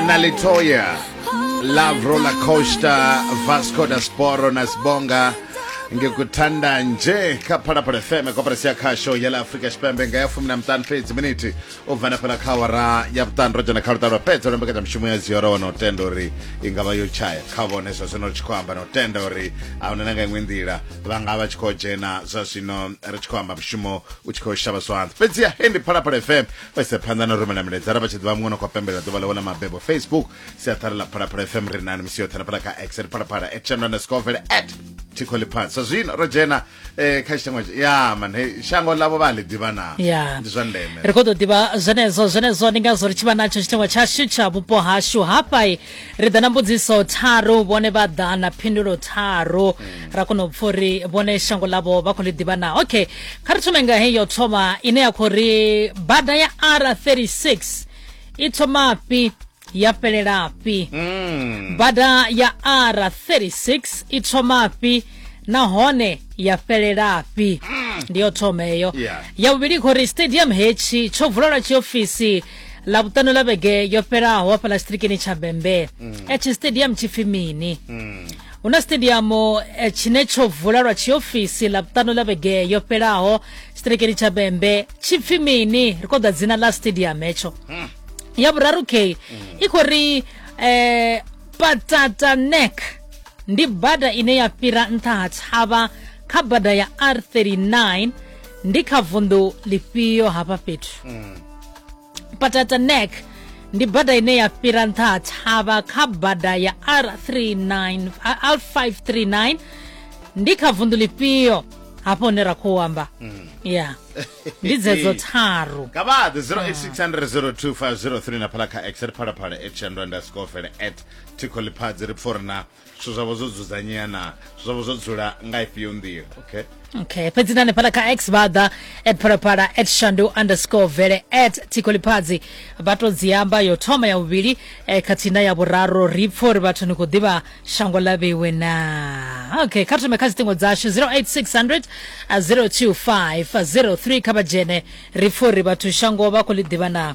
nalitoya love roller coaster vasco da sporo na sibonga ngikuthanda nje kha phalaphala fm koperesi ya khasho ya la afrika tshipembe nga ya fumi na mutanu fhedzi miniti u bva na fhela kha awara ya vhuṱanu ro dzhena kha luṱa lwa fhedza lwa mbekanyamushumo ya ziyora wana u tenda uri i nga vha yo tshaya kha vhone zwa zwino ri tshi khou amba na u tenda uri a huna na nga iṅwe nḓila vha nga vha tshi khou dzhena zwa zwino ri tshi khou amba mushumo u tshi khou shavha zwanḓa fhedziha hei ndi phalaphala fm vha ise phanḓa na u rumela milaedza ra vha tshi ḓivha muṅwe no khou pembelela ḓuvha ḽawe ḽa mabebo facebook siaṱhara ḽa phalaphala fm ri nani misi yoṱhe na phala kha x ri phalaphala at channel underscore vele at thikho ḽiphansi sa zwino ro dzhena eh, kha tshitangwa tsha- ya man he shango ḽavho vha a ḽi ḓivha na ya ndi zwa ndeme ri khou ḓo ḓivha zwenezwo zwenezwo ndi ngazwo ri tshi vha natsho tshitengwa tshashu tsha vhupo hashu hafha ri ḓa na mbudziso tharu vhone vha ḓa na phindulo tharu mm. ra kona u pfa uri vhone shango ḽavho vha khou ḽi ḓivha na okay kha ri thome nga heyi yo thoma ine ya khou ri bada ya r 36 i thoma fhi ya fhelela fhi mm. bada ya r 36 i thoma fhi nahone ya fhelela fhi mm. ndi yo thoma eyo ya vhuvhili khou ri stadium hetshi tsho vulelwa tshiofisi ḽavhuṱanu ḽa vhege yo fhelaho hafhaḽa tshitirikini tsha bembe mm. eh, tshi stadium tshi pfi mini mm. hu na stadium eh, tshine tsho vula lwa tshiofisi ḽavhuṱanu ḽa vhege yo fhelaho tshitirikini tsha bembe tshi pfi mini ri khou ḓa dzina ḽa stadium hetsho hmm. ya vhuraru k hmm. i khou ri um patata neck ndi bada ine ya fhira nṱha ha tshavha kha bada ya r 39 ndi kha vunḓu ḽifhio hafha fhethu mm. patata neck ndi bada ine ya fhira nṱha ha thavha kha bada ya r39 r539 ndi kha vunḓu lifhio hafho hune ra khou amba ya ndi dzedzo tharu nga vha ḓe 086002503 na phala kha x ri phalaphala at shandu underscore vele at tikho liphadzi ri pfo ri na zwithu zwavho zwo dzudzanyea na zwithu zwavho zwo dzula nga ifhio nḓila okay okay fhedzi na hanefhala kha x vhaḓa at phalaphala at shandu underscore vele at tikoliphazi vha to dzi amba yo thoma ya vhuvhili eh, khathihi na ya vhuraru ri pfha uri vhathu ni khou ḓivha shango ḽa vheiwe na okay kha thome kha dziṱingo dzashu 08600 025 03 kha vha dzhene ri pfha uri vhathu shango vha khou ḽi ḓivha na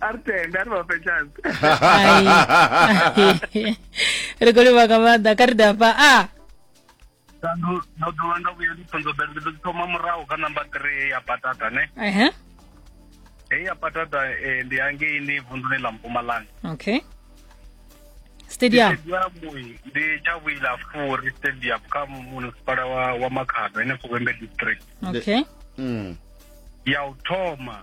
a ri tende a ri vhafhe chance ri khou livha nga maanḓa kha ri dafha a ah. ndo dovha nda vhuya ndi songo bere ndi ḓo thoma murahu kha namba three ya patata ne ehe hei ya patata eh, ndi hangei ni vunḓuni ḽa mpumalanga okay stadium ndi tshavhuila furi stadium kha munisipala wa, wa makhado ene fuvhembe district okay mm. ya u thoma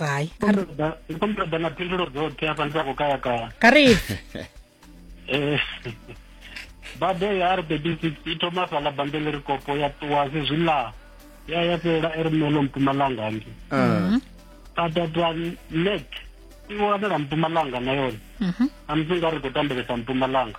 hai komreda na phindulo dzoṱhe afha ndi sa khou kaya kaya kha ri eh, bada ya r baby six i thoma fhala bambele ri kopo ya ṱuwa sezwi ḽa ya ya fhelela e ri melo mpumalanga ndi badadwa ah. mhm. nek i wanela mpumalanga na yone mhm. amusi nga ri khou tambelesa mpumalanga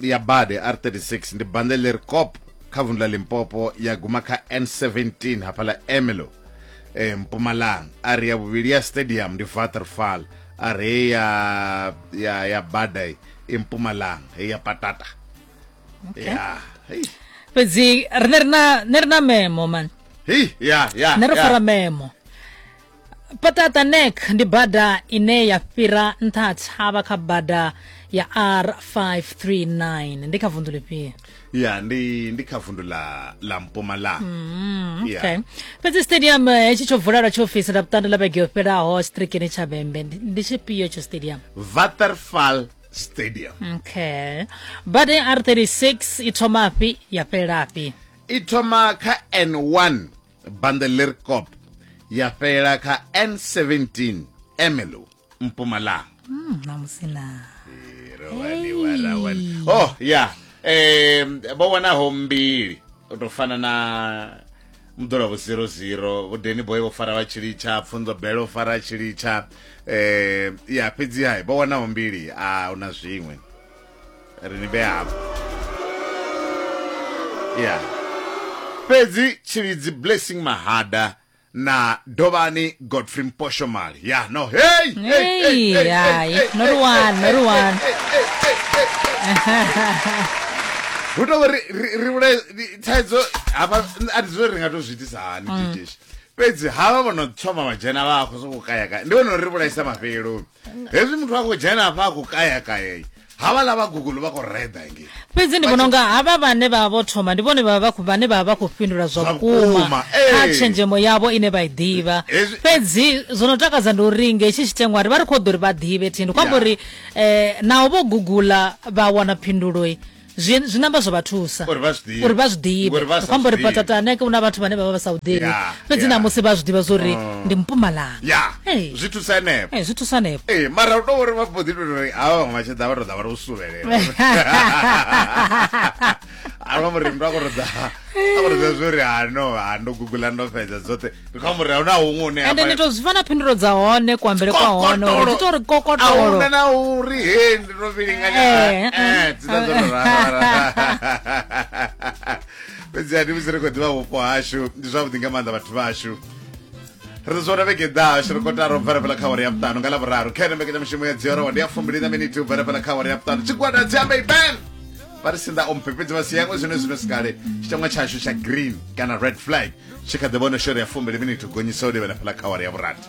ya bade r36 ndi bande ḽi re cop kha vundu ḽa limpopo ya guma kha n17 hafha ḽa emelo e, mpumalanga a ri ya vhuvhili ya stadium ndi vaterfall a re hei ya, ya, ya bada i i mpumalanga hei ya patata Okay. ya hei fhedzi rine rina ne rina memo man hei ya ya ne ri ya. fara memo paṱaṱa nek ndi bada ine ya fhira nṱha ha tshavha kha bada ya r539 ndi kha vundu lifhio ya ndi ndi kha vundu la la mpumalanga mm, yeah. okay fhedzi stadium eh, hetshi tsho vula lwa tshiofisi la vhuṱanda la vhege yo fhelaho strikini tsha vhembe ndi tshifhio tsho stadium vatherfall stadium okay bada ya r36 i thoma fhi ya fhelafhi i thoma kha n1 bande leri cop ya fhelela kha n17 emelo mpumalanga Mm, namusi na Rawani, wa, rawani. oh ya um vho wanaho mbili u tou fana na mḓola vho 00 vho deni boy vho fara vha tshilitsha pfunzo bele vho fara tshilitsha um ya fhedzi hai vho wanaho mbili a una zwiṅwe ri ni vhea hafho ya fhedzi tshilidzi blessing mahada na dovhani godfrey mposhomali ya no hey Hey, hai, no ri wana, no ri wana. hu tou ri ri- ri vhulaye i- thaidzo hafha n- a ndi zwi ri nga tou zwi itisa hani dijeshi fhedzi havha vho no thoma vha dzhena vha khou sokou kayakaya ndi vhona uri ri vhulaisa mafheloni hezwi muthu a khou dzhena hafha a khou kaya kayei havha la vha google vha khou reda ngei fhedzi ndi vhona unga havha vhane vha vha vho thoma ndi vhone vha vha khou- vhane vha vha vha khou fhindula zwa Zwa vhukuma vhukuma, ee. kha tshenzhemo yavho ine vha i ḓivha Hezwi- fhedzi zwo no takadza ndi uri nge tshi tshitengwa ri vha ri khou ḓo uri vha ḓivhe thini khou amba Ya. uri um naho vho gugula vha wana phinduloi zwi zwi namba zwo vha thusa Uri vha zwi ḓivhe. uri vha zwi ḓivhe Ngori vha sa ri khou amba uri zwi ḓivhi. patatane hu na vhathu vhane vha vha vha sa u ḓivhi Yeah, fhedzi yeah. namusi vha zwi ḓivha zwo ri Mm. ndi mpumalanga ya Hey. zwi thusa henefho Eh, zwi thusa hanefho ee mara u to uri vha mbo ḓi to uri hawa vhaṅwe vha tshi ḓa vha to ḓa vha to suvhelela a vha muri mndu a korodza a korodza zwo ri hano ha ndo gugula ndo fhedza dzoṱhe ndi kha murahu na huṅwe hune ha ende vha- ni to zwi vha na phindulo dza hone kuambele kwa hone uri Kokotolo. dzi to ri Ahuna kokotolo na uri he ndi no vhilinganya Eh, eh. Eh, dzina dzo no rara fhedzi ani musi ri khou ḓivha vhupo hashu ndi zwavhuḓi nga maanḓa vhathu vhashu ri ḓo zwona vhege ḓaho shiri kotara u bvela fhela kha awara ya vhuṱanu nga lavhuraru kha ene mbekanyamushumo ya dziorowa ndi ya fumbili na miniti u bvela fhela kha awara ya vhuṱanu tshigwada dzi ambe ben vha ri sinḓa o mphepfedzi vha siyangwe zwine zwino sikale tshitangwa tshashu tsha green kana red flag tshi kha ḓi vhona shore ya fumbili minithu gonyisa u livhela fhela kha awara ya vhurathi